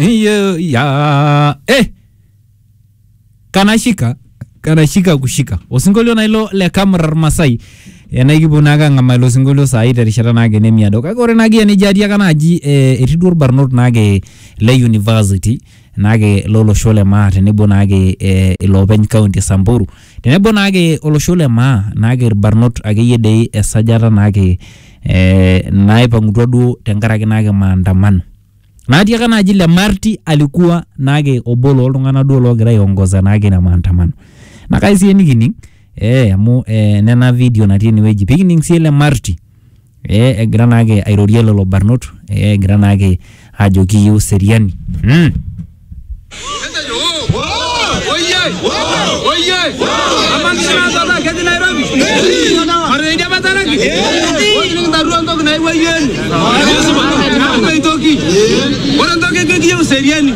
Iyo ya eh kanashika kanashika kushika osinkolio nailo le kamrar masai enaikipuo naake ang'amaa ilo sinkolio saai terishata naake nemiado kake ore naake enijo atiaka naaji eh, etii duo irbarnot naake le university naake lo losho le Maa tenebo naake eh, iloopeny kaunti e Samburu tenebo naake olosho le Maa naake irbarnot akeyie dei esajata naake eh, naipang'utua duo tenkaraki naake maandamano. Naatiaka naaji le Marti alikuwa naake obo looltung'anak duo loogira aiongoza naake ina maandamano. Naa kai sii enikining eh, amu eh, nena video natii enewueji pikining sii ele Marti. eh, egira naake airorie lelo barnot eh, egira naake aajo kiyieu seriani mm. Ore entoki nikiyieu seriani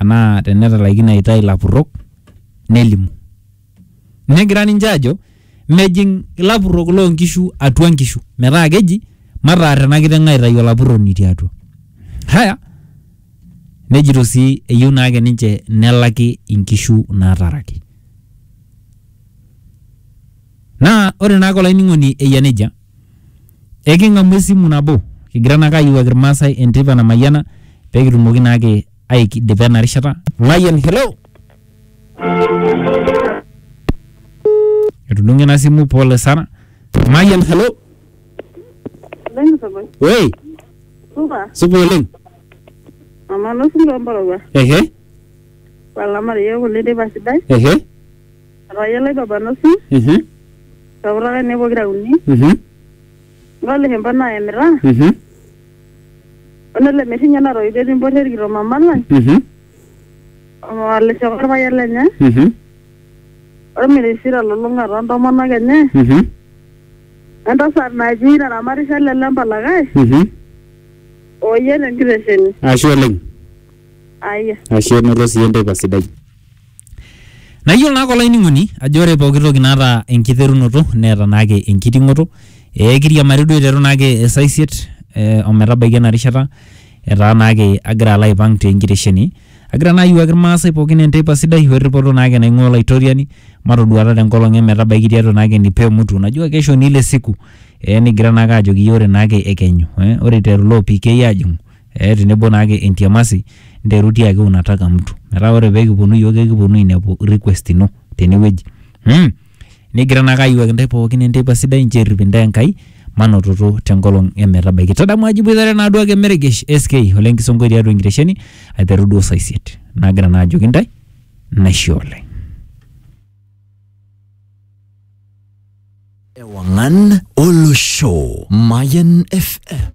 anaa tenetalaikine aitayu ilapurrok nelimu. Negira ninche aajo mejing ilapurrok loo nkishu atua nkishu metaa keji mataar ena kiteng aitayu olapurroni tiatua. Haya, nejito sii eyieu naake ninche nelaki inkishu naataraki. Naa ore naake olainining'oni eyia nejia Eking'amu esimu nabo kigira naake ayiewuaki Irmaasai enteipa namayiana pee kitumoki naake aidipa ena rishata. Mayian, hello. Etudung'o ina simu pole sana. Mayian, hello. Woi, Supa, supa oleng. mama nosi loo mpororua. Ehe, Walamari yiok oleng teipa sidai. ehe. Atayiolo ai papa nusu, Mhm. sapurrok ainei pokira uni, Mhm. ng'ole hempa naemita, Mhm. onele merrinyo natoiwuo etii mporre rikito mama lang, Mhm. oleshok orpayian lenye, Mhm. ormirishi telulung'a toontomonok enye, Mhm. entasat naji naramatisho lele empalakae, Mhm. ooyie tenkitesheni. Ashe oleng. Aya. Ashe enoto sii enteipa sidai. Naa iyiolo naake olainining'oni ajo ore pooki toki naata enkiterunoto neeta naake enkiting'oto. Ee kiriamari duo aiteru naake esaa isiet o metabaiki ena rishata etaa naake agira alo aipang' te nkitesheni, agira naa ayiewuaki irmaasai pookin enteipa sidai we ripoto naake naing'ua Olaitoriani matoduata te nkolong' e metabaiki tiatua naake enipa e mutu. Najua kesho ni ile siku ee nikigira naake aajoki iyiok ore naake ekenyu ee ore iteru iloopii keyieu aajing'u. eh, tenebo naake entiamasi nteru tiaki unataka mtu metaa ore peekiponu iyiook ekiponu ainepu request ino tenewueji hmm. nigira naake ayiwuaki intae pookin enteipa sidai nchoo errip intae Enkai manototo tenkolong emetabaiki tadamu ajo iboitare naaduo ake meregesh SK ole nkisonkoi tiatua enkitesheni aiteru duo saa isiet nagira naa ajoki intae naishe oleng Ewangan Olosho Mayan FM